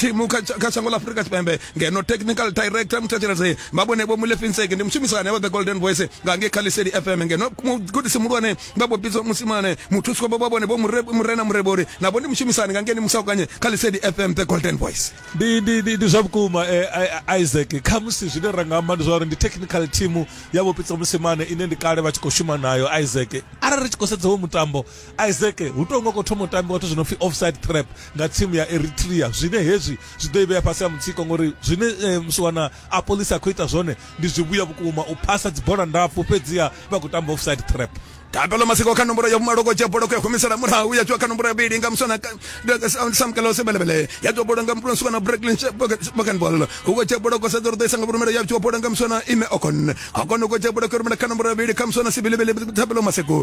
thimu kha tsha- kha shango ḽa afurika tshipembe ngeno technical director muthetshelesi mabone vho mulefinseki ndi mushumisani avha the golden voice nga ngei kha liseli fm ngeno mugudisi muhulwane vha vho bidzwa musimane muthusi wavho vha vhone vho Mure- murena murebori navho ndi mushumisani nga ngei ni musaukanye kha liseli fm the golden voice ndi ndi ndi ndi zwa vhukuma eh, I- I- Isaac kha musi zwine ra nga amba ndi zwa uri ndi technical team ya vhopitsa musimane ine ndi kale vha tshi khou shuma nayo Isaac arali ri tshi khou sedza wo mutambo isaac hu tou nga khou thoma u tambiwa zwithu zwi no pfi offside trap nga tsimu ya eritrea zwine hezwi zwi ḓo i vhea fhasi ha mutsiko ngori zwine eh, msiwana a polisi a khou ita zwone ndi zwivhuya vhukuma u phasa dzibola ndapfu fhedziha vha khou tamba offside trap Kabelo masiko kha nomboro ya vhumaloko dzhia bola ku ya humisela murahu ya dzhiwa kha nomboro ya vhili nga muswana Sam Kalose belebele ya dzhiwa bola nga muthu muswana Brooklyn Bokenbol huko dzhia bola kosa ḓo ḓisa nga vhurumela ya dzhiwa bola nga muswana Ime Okon Okon huko dzhia bola ku rumela kha nomboro ya vhili kha muswana Sibilebele Thabelo masiko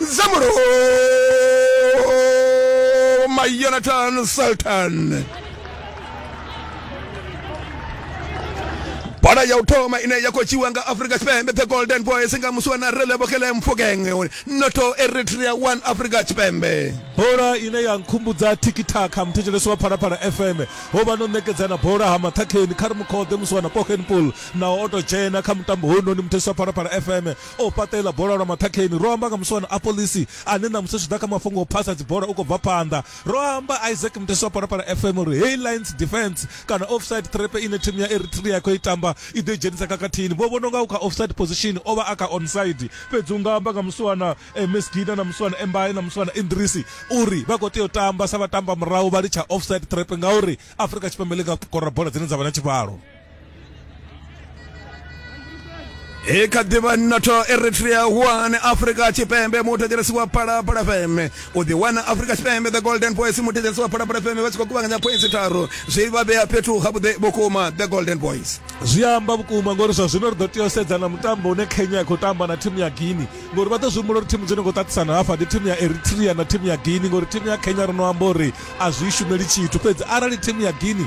Zamuro ma Yonatan Sultan. bola ya u thoma ine ya khou dzhiwa nga afrika tshipembe the golden boys nga musi wa na relebokele mfukeng noto eritrea 1 afrika tshipembe bola ine ya nkhumbudza tikitaka muthetshelesi wa phalaphala fm ho vha no ṋekedzana bola ha maṱhakheni kha ri mukhoḓe musi wana pokenpool naho o to dzhena kha mutambo hounoni muthetshelesi wa phalaphala fm o fhaṱa iḽa bola lwa maṱhakheni. Ro amba nga muswa na Apolisi ane ṋamusi zwi tshi ḓa kha mafhungo a u phasa dzibola u khou bva phanḓa. Ro amba Isaac Mutesi wa Phalaphala FM uri heyi lines defence kana offside trap ine thimu ya Eritrea ya khou i tamba i ḓo i dzhenisa khakhathini. Vho vhona u nga u kha offside position, o vha a kha onside. Fhedzi u nga amba nga muswa na Mesgida na muswa na Mbaye na muswa na Idrisi uri vha khou tea u tamba sa vhatambamurahu vha litsha offside trap ngauri Afrika Tshipembe ḽi nga kora bola dzine dza vha na tshivhalo. e kha ḓivha noto eritrea one afrika tshipembe muthetshelesi wa phalaphala fm u ḓiwana afrika tshipembe the golden boys muthetshelesi wa phalaphala fm vha tshi khou kuvhanganya points tharu zwi vha vhea fhethu ha vhuḓe vhukuma the golden boys zwi amba vhukuma ngori zwa zwino ri ḓo tea u sedza na mutambo une kenya ya khou tamba na thimu ya guini ngori vha ḓo zwi humbula uri thimu dzo no khou ṱaṱisana hafha ndi thimu ya eritrea na thimu ya guini ngori thimu ya kenya ro no amba uri a zwi shumeli tshithu fhedzi arali thimu ya guini